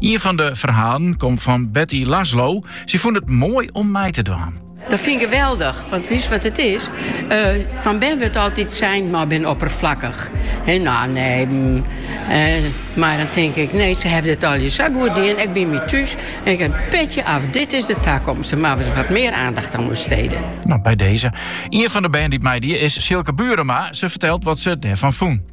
Ien fan de ferhalen komt fan Betty Laszlo. Sy fûn it moai om mei te dwaan. Dat fyn ik geweldich, want wist wat it is? Eh, fan bern wurdt altyd sein, ma bin opperflakkich. En nou, nee. Mm, eh, mar dan tink ik, nee, se hawwe dit al sa goed dien. Ik bin mei thús en ik ha in petje af. Dit is de takomst. Moatte we wat mear oandacht oan besteden. No, bij deze. Ien fan de bern dy't meidie is Silke Burema. Se fertelt wat se derfan fûn.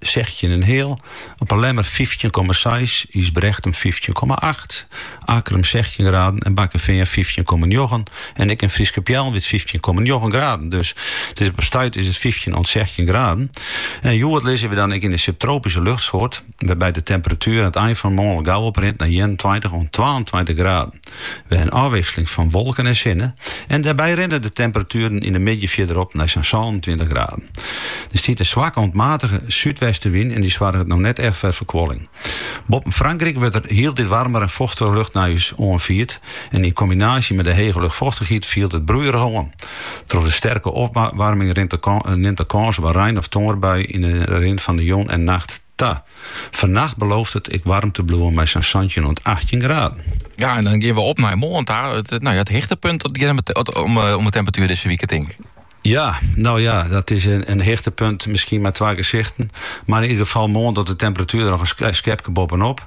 sechstjin en heal, op 'e Lemmer fyftjin komma seis, Ysbrechtum fyftjin komma acht, Akkrum sechstjin graden en Bakkefean fyftjin komma njoggen. En ek yn Fryske Peallen wie it fyftjin komma njoggen graden. Dus it is op 't stuit is it fyftjin oant sechstjin graden. En hjoed lizze we dan ek yn de subtropyske luchtsoart, wêrby't de temperatuer oan it ein fan 'e moarn gau oprint nei ienentweintich oant twaentweintich graden. Wer in ôfwikseling fan wolken en sinne en dêrby rinne de temperatueren yn de middei fierder op nei sa'n sânentweintich graden. Der stiet in swakke oant matige súdwestenwyn en dy soarget no net echt foar ferkoeling. Boppen Frankryk wurdt der hieltyd waarmer en fochtiger lucht nei ús oanfierd en yn kombinaasje mei de hege luchtfochtichheid fielt it broeierich oan. Troch de sterke opwaarming nimt de kâns op in rein of tongerbui yn de rin fan de jûn en nacht ta. Ta, fannacht belooft it ek waarm te bliuwen mei sa'n santjin oant achttjin graden. Ja, en dan geane we op nei moarn ta. It, no ja, it hichtepunt om, eh, om de temperatuer dizze wike, tink ik. Ja, no ja, dat is in, in hichtepunt, miskien mei twa gesichten. Mar yn ieder gefal moarn docht de temperatuer der noch in skepke boppe-op.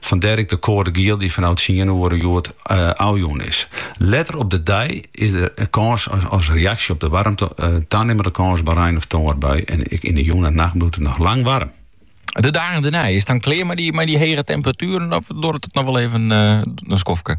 Fandêr ek de koade giel dy't fanôf tsien oere hjoed ôfjûn is. Letter op de dei is der kâns as reaksje op de waarmte tanimmende kâns op rein of tongerbui en ek yn de jûn en nacht bliuwt it noch lang waarm. De dagen dêrnei, is it dan klear mei dy hege temperatueren of duorret it noch wol even in skofke?